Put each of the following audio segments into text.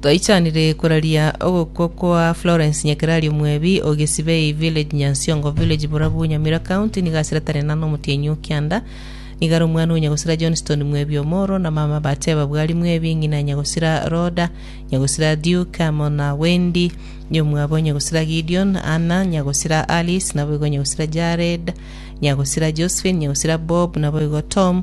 Twaichanire koraria ogokwa kwa Florence Nyakerario Mwebi o Gesibei Village Nyansiongo Village Borabu Nyamira County nigo asiratane na nomotienyi o kianda nigare omwana o Nyagosira Johnston Mwebi omoro na mama bateba Bwari Mwebi ng'ina Nyagosira Rhoda Nyagosira Duke amo na Wendy nyomwabo Nyagosira Gideon Anna Nyagosira Alice naboigo Nyagosira Jared Nyagosira Josephine Nyagosira Bob naboigo Tom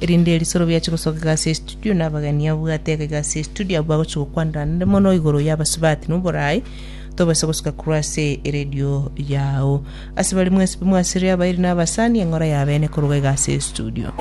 erinde erisorobi ache gosoka egasi ya estudio na abageni abwate ege egasi ya estudio abwo bagochia gokwanera nere mono igoro ya abasubati na oboraai tobase gosoka korwa ase eredio yao ase bari mwensi bimwasire abairi na abasani eng'ora ya abene koruga egasi ya estudio